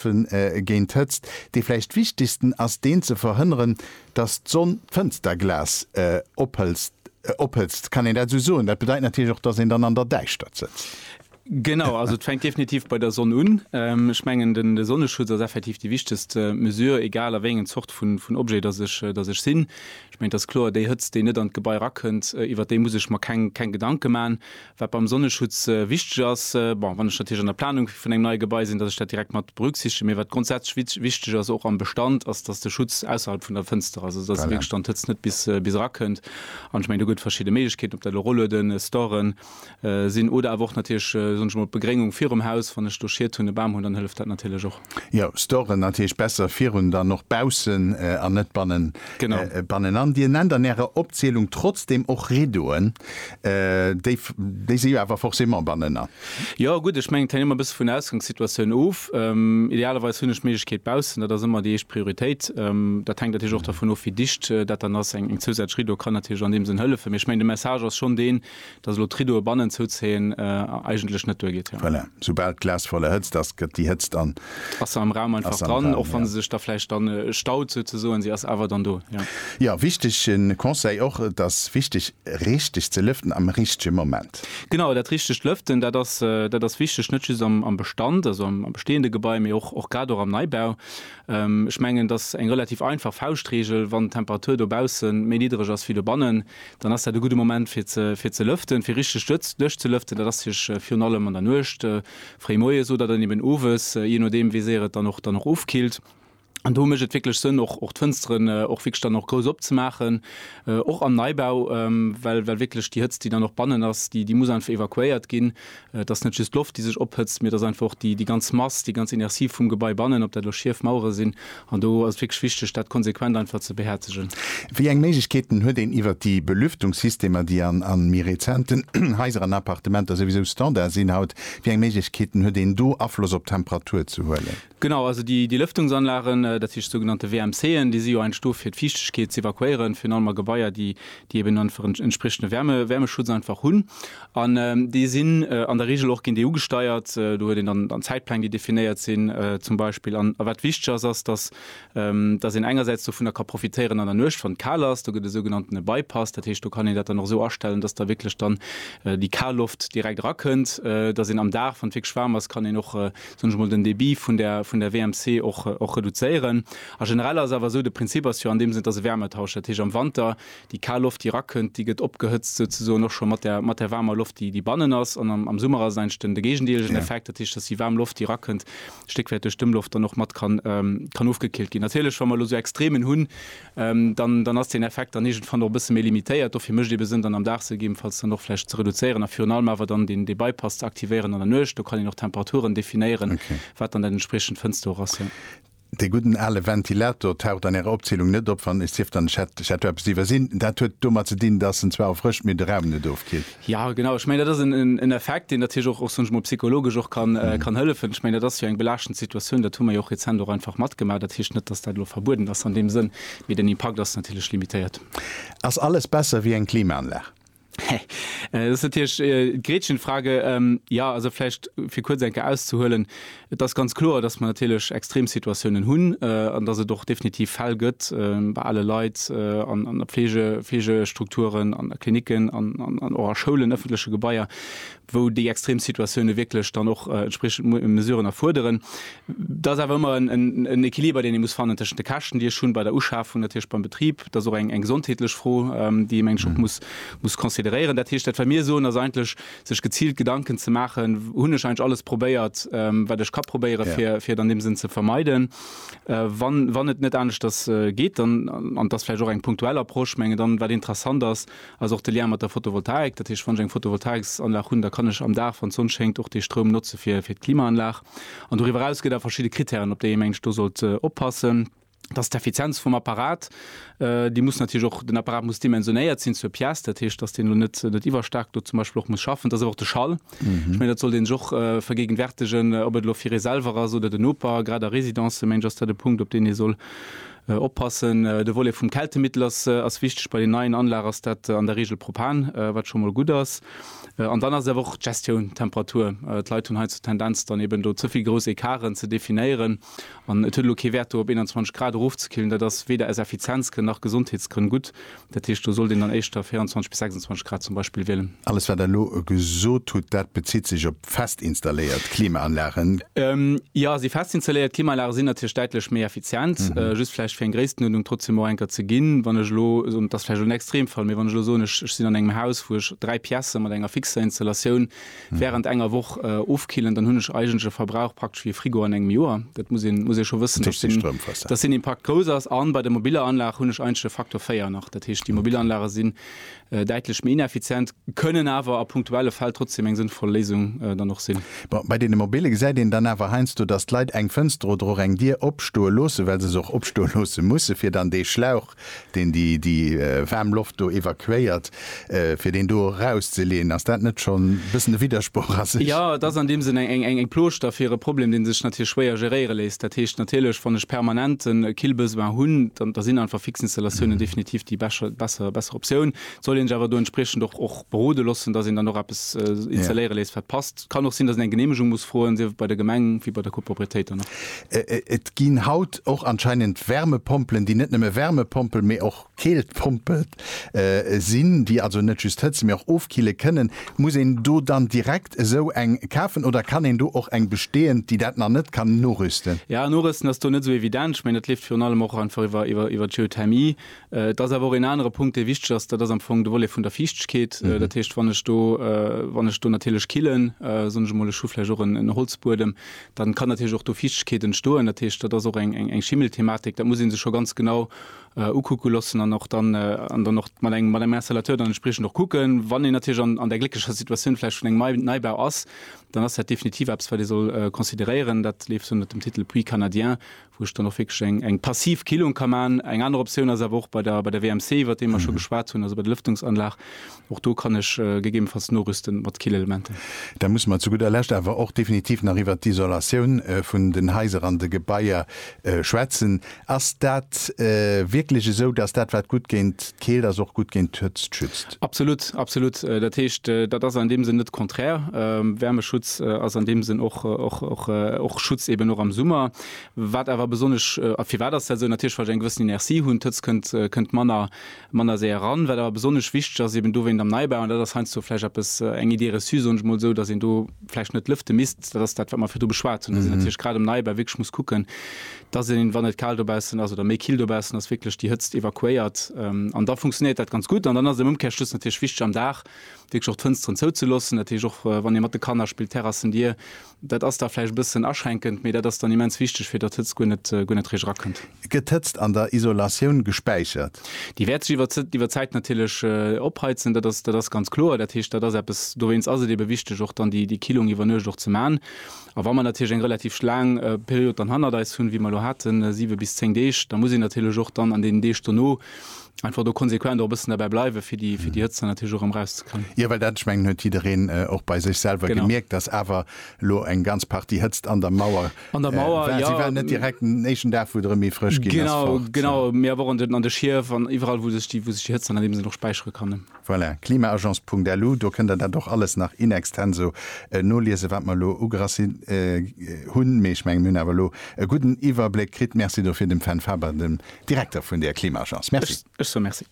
Vun e géint d'Hëtzt. Dee vläicht wichtegsten ass deen ze verhënneren, datt d'Sonn d'Fënsterglas ophëlzt, ophëtzt, kann een dat esou soen? Dat bedeit natierlech och, datt een dann an der Däischtert sëtzt. Genau, also et fänkt definitiv bei der Sonn un. Ech mengen den de Sonneschutz ass effektiv déi wichtegst Mesure, egal a wéi engen Zort vun vun Objet datt ech datt ech sinn. Ech mengen et ass kloer, déi Hëtzt déi net an d'Gebai erakënnt, iwwert déi muss ech mer keng keng Gedanke man. Wat beim Sonneschutz wichteg ass, bon, wann ech natierlech an der Planung vun engem neie Gebai sinn, dass ech dat direkt mat berücksichtegen. Mee wat grondsätzlech wichteg ass, och am Bestand, ass, dass de Schutz ausserhalb vun der Fënster ass, also dass wierklech dann d'Hëtzt net bis erakënnt. An ech mengen, do gëtt et verschidde Méiglechkeeten, ob dat elo Rollueden, Storen sinn oder awer och natierlech, soen ech emol, d'Begréngung virum Haus. Wann ech do Schiet hunn, e Bam hunn, dann hëlleft dat natierlech och. Jo, Storen natierlech besser virun, dann och baussen an net bannen, bannenan. Dir nennt an Ärer Opzielung trotzdem och Rideauen, déi, déi si jo awer forcément bannenan. Jo, gutt, ech mengen, et hänkt ëmmer e bësse vun der Ausgangssituatioun of. Idealerweis hunn ech d'Méiglechkeet baussen, dat ass ëmmer déi éischt Prioritéit. Dat hänkt natierlech och dervun of, wéi dicht dat dann ass. Eng zousätzlech Rideau kann natierlech an deem Sënn hëllefen, mee ech mengen, de Message ass schonn deen, Dass elo d'Riddoe bannen zouzéien eigentlech net duergeet, jo. Voilà, soubal d'Glas voll erhëtzt ass, gëtt déi Hëtzt an. Ass am Raum einfach dran, och wa se sech da vläicht dann staut souzesoen, si ass awer dann do, jo. Jo, wichtege Conseil och, et ass wichteg richteg ze lëften am richtege Moment. Genau, dat richtegt Lëften, dat ass, dat ass wichteg, net just am, am Bestand, also am bestehende Gebai, mee och, och grad och am Neibau. Ech mengen, et ass eng relativ einfach Fauschtregel, wann d'Temperatur dobausse méi niddereg ass wéi dobannen, dann ass dat e gudde Moment fir ze lëften, fir richteg duerchzelëften. Dat ass virun allem an der Nuecht, fréi moies oder dann eben owes, jee nodeem wéi séier et dann och ofkillt. An do mécht et wierklech Sënn och d'Fënsteren och wierklech dann och grouss opzemaachen, och am Neibau, well wierklech déi Hëtzt, déi dann och bannen ass, déi muss einfach evakuéiert ginn. Et ass net just d'Loft, déi sech ophëtzt, mee et ass einfach och déi ganz Mass, déi ganz Inertie vum Gebai bannen, ob dat elo schief Mauere sinn. An do ass et wierklech wichteg, dat konsequent einfach ze behäerzegen. Wéi eng Méiglechkeeten huet een, iwwert déi Belüftungssystemer, déi a méi rezenten Haiser an Appartementer souwisou Standard sinn haut, wéi eng Méiglechkeeten huet een do, Afloss op d'Temperatur ze huelen? Genau, also déi Lëftungsanlagen, dat heescht sougenannte WMC'en, déi si jo entsto fir d'Fiichtegkeet ze evakuéieren, virun allem a Gebaier, déi eben einfach en entspriechende Wäermeschutz einfach hunn. An déi sinn an der Reegel och gendeugesteiert. Do huet een dann Zäitpläng, déi definéiert sinn zum Beispill. An wat wichteg ass, ass, datt een engersäits dovunner ka profitéieren an der Nuecht, wann et kal ass. Do gëtt e sougenannten Bypass, dat heescht do kann een dat dann och esou astellen, datt da wierklech dann déi kal Loft direkt erakënnt, datt een am Dag, wann et wierklech waarm ass, kann een och soen ech mol, den Débit vun der, vun der WMC och, och reduzéieren. A generell ass awer esou, de Prinzip ass jo an deem Sënn, et ass e Wärmetausch. Dat heescht, am Wanter, déi kal Loft, déi erakënnt, déi gëtt opgehëtzt souzesoen och scho mat der, mat der waarmer Loft, déi, déi bannen ass. An am, am Summer ass et eigentlech den, de géigendeelegen Effekt. Dat heescht, dass déi waarm Loft, déi erakënnt, stéckwäit duerch d'Ëmloft dann och mat kann, kann ofgekillt ginn. Natierlech, wa mer elo esou Extremen hunn, dann dann ass deen Effekt dann iergendwann och e bësse méi limitéiert. Dofir mécht ebe Sënn, dann am Dag se gegebenfalls dann och vläicht ze reduzéieren a virun allem awer dann deen dee Bypass ze aktivéieren an der Nuecht. Do kann een och Temperaturen definéieren, wat dann dat entspriechend Fënster och ass, jo. Dee gudden ale Ventilator taucht an Ärer Opzielung net op, wann, et sief dann, ech hätt, ech hätt do eppes iwwersinn. Dat huet domat ze dinn, dass en zwar erfrëscht, mee de Raum net ofkillt. Jo, genau. Ech mengen, dat ass en Effekt, deen natierlech och, soen ech mol, psychologesch och kann hëllefen. Ech mengen, dat ass jo eng belaaschtend Situatioun. Dat hu mer jo och rezent och einfach matgemaach. Dat heescht net, dass dat elo verbueden ass an deem Sënn, mee den Impakt ass natierlech limitéiert. Ass alles besser wéi eng Klimaanlag? Hä? Dat ass natierlech d'Gretchenfrage. Jo, also vläicht fir kuerz eng Kéier auszehuelen, Et ass ganz kloer, dass mer natierlech Extremsituatiounen hunn an dass et och definitiv Fäll gëtt bei ale Leit an a Pflege, Pflegestrukturen, an a Klinicken an och a Schoulen, ëffentleche Gebaier, wou déi extrem Situatioune wierklech dann och entspriechend Mesuren erfuerderen. Et ass awer ëmmer en Equiliber, deen ee muss fannen tëschent de Käschten, déi ech hunn bei der Uschafung natierlech beim Betrib. Et ass och eng gesondheetlech Fro, déi ee meng ech och muss consideréieren. Dat heescht, dat wat mir soen, ass eigentlech, sech geziilt Gedanken ze maachen, hunn ech eigentlech alles probéiert, wat ech ka probéieren, fir et an deem Sënn ze vermeiden. Wann et net aneschters geet, dann, an et ass vläicht och eng punktuell Approche, ech mengen dann, wat interessant ass, ass och de Lien mat der Photovoltaik. Dat heescht, wann ech eng Photovoltaiksanlag hunn, da kann ech am Dag, wann d'Sonn schéngt, och dee Stroum notze fir d'Klimaanlag. An doriwwer eraus gëtt et awer verschidde Krittären, op déi ee meng ech do sollt oppassen. Dass d'Effizienz vum Apparat, déi muss natierlech och, den Apparat muss dimensionéiert sinn zur Pièce, dat heescht, dass deen elo net net iwwerstaark do zum Beispill och muss schaffen. Dass awer och de Schall, ech mengen, dat sollt een sech och vergéigenwärtegen, ob et elo fir ee selwer ass oder den Noper, grad a Residencen, menge ech, ass dat e Punkt, op deen ee soll oppassen. De Volet vum Kältemittel ass ass wichteg. Bei den neien Anlage ass dat an der Regel Propan, wat scho mol gutt ass. An dann ass et awer och d'Gestioun, d'Temperatur. D'Leit hunn hei zur Tendenz, dann eben do ze vill grouss Ecarten ze definéieren. An et huet elo kee Wäert do op 21 Grad erofzekillen, dat ass weder aus Effizienzgrënn nach Gesondheetsgrënn gutt. Dat heescht, do sollt een dann éischter 24 bis 26 Grad zum Beispill wielen. Alles wat Der elo gesot hutt, dat bezitt sech op festinstalléiert Klimaanlagen? Jo, si festinstalléiert Klimaanlage sinn natierlech däitlech méi effizient. Just vläicht fir eng Gréisstenuerdnung trotzdem och enker ze ginn, wann ech elo soen, dat ass vläicht elo en Extremfall, mee wann ech elo soen, ech sinn an engem Haus wou ech dräi Piècen mat enger fixer Installatioun, Während enger Woch ofkillen, dann hunn ech eigentlech e Verbrauch praktesch wéi e Frigo an engem Joer. Dat muss een, muss ee scho wëssen, dass den, dass den Impakt grouss ass. A bei der mobiller Anlag hunn ech eigentlech e Faktor 4 nach. Dat heescht, déi mobil Anlage sinn däitlech méi ineffizient, kënnen awer a punktuelle Fäll trotzdem eng sënnvoll Léisung dann och sinn. Bon, bei deene mobille gesäit een dann awer heiansdo, dass d'Leit eng Fënster oder och eng Dier opstoe loossen, well se se och opstoe loosse mussen, fir dann dee Schlauch deen déi déi waarm Loft do evakuéiert fir deen do erauszeleeën, ass dat net schonn e bëssen e Widdersproch a sech? Jo, et ass an deem Sënn eng eng Plooschter fir e Problem, dee sech natierlech schwéier geréiere léisst. Dat heescht natierlech, wann ech permanent e Killbesoin hunn, dann da sinn einfach fix Installatiounen definitiv déi bescher besser Optioun. Soll een sech awer do entspriechend och och berode loossen, datt een dann och eppes installéiere léisst, wat passt. Et kann och sinn, datt een eng Geneemegung muss froen, sief et bei der Gemeng wéi bei der Copropriétéit dann och. Et ginn haut och anscheinend Wärmepompelen, déi net nëmme Wärmepompel, mee och Keeltpompel sinn, déi also net just hëtzen, mee och ofkille kënnen. Muss een do dann direkt esou eng kafen oder kann een do och eng bestehend, déi dat nach net kann, norüsten? Jo, norüsten ass do net esou evident. Ech mengen, dat leeft virun allem och einfach iwwer iwwer d'Geothermie, Et ass awer och een anere Punkt, dee wichteg ass, dat ass am Fong de Volet vun der Fiichtegkeet. Dat heescht, wann ech do, wann ech do natierlech killen, soen ech emol, ech hu vläicht och en Holzbuedem, dann kann natierlech och do Fiichtegkeet entstoen. Dat heescht, dat ass och eng eng Schimmelthematik. Dat muss ee sech scho ganz genau ukucke loossen an och dann an dann och mat engem mat engem Installateur dann entspriechend och kucken. Wann een natierlech an an där glécklecher Situatioun vläicht vun engem nei Neibau ass, dann ass dat definitiv eppes, wat ee soll consideréieren. Dat leeft ënnert dem Titel Puits canadien, wou ech dann och wierklech eng eng passiv Killung ka maachen. Eng aner Optioun ass awer och bei der bei der WMC, iwwert déi mer scho geschwat hunn, also bei der Lëftungsanlag. Och do kann ech gegebenfalls norüsten mat Killelementen. Da musse mer zu gudder Lescht awer och definitiv nach iwwert d'Isolatioun vun den Haiser an de Gebaier schwätzen. Ass dat wierklech esou, dass dat wat gutt géint D'Keelt ass och gutt géint d'Hëtzt schützt. Absolut, absolut. Dat heescht, dat ass an deem Sënn net konträr. Wärmeschutz ass an deem Sënn och och Schutz eben och am Summer. Wat awer besonnesch, a firwat ass dat esou? Natierlech wa ech eng gewëssen Inertie hunn, d'Hëtzt kënnt kënnt manner manner séier eran. Wat awer besonnesch wichteg ass eben dowéint am Neibau, an dat ass heiansdo vläicht eppes eng Idée reçue, soen ech mol esou, datt een do vläicht net lëfte misst, dat ass dat wat mer virdru beschwat hunn, datt een natierlech grad um Neibau wierklech muss kucken, dass een, wann et kal dobaussen ass oder méi kill dobaussen ass, wierklech déi Hëtzt evakuéiert. An da funktionéiert dat ganz gutt. An dann ass et am Ëmkärschluss natierlech wichteg, am Dag wierklech och d'Fënsteren zouzeloossen. Dat heescht, och wann ee mat de Kanner spillt, Terrassen dier. Dat ass da vläicht e bëssen aschränkend, mee dat ass dann immens wichteg, fir datt d'Hëtzt guer net eréischt erakënnt. Gëtt d'Hëtzt an der Isolatioun gespäichert? Déi wäert sech iwwer d'Zäit natierlech opheizen, dat ass ganz kloer. Dat heescht, dat ass eppes, dowéinst ass et ebe wichteg, och dann déi Killung iwwer Nuecht och ze man. A wa mer natierlech eng relativ laang Period dann hannert eis hunn, wéi mer elo haten, siwe bis zéng Deeg, da muss een natierlech och dann an deenen Deeg dono einfach do konsequent och e bëssen derbäi bleiwen, fir déi Hëtzt dann natierlech och erëm erauszekréien. Jo, well dat, ech mengen, huet jiddereen och bei sech selwer gemierkt, dass awer elo eng ganz Partie Hëtzt an der Mauer war. Si war net direkt den éischten Dag, wou et erëm méi frësch ginn ass, fort. Genau, genau. Mee awer och an de Schief an iwwerall, wou sech déi Hëtzt dann an deem Sënn och späichere kann. Voilà, klimaagence.lu, do kënnt der dat och alles nach in extenso noliesen, wat mer elo ugerassi hunn. Mee ech mengen, mir hunn awer elo e gudden Iwwerbléck kritt. Merci dofir dem Fenn Faber, dem Direkter vun der Klimaagence. Merci. Ech soe Merci.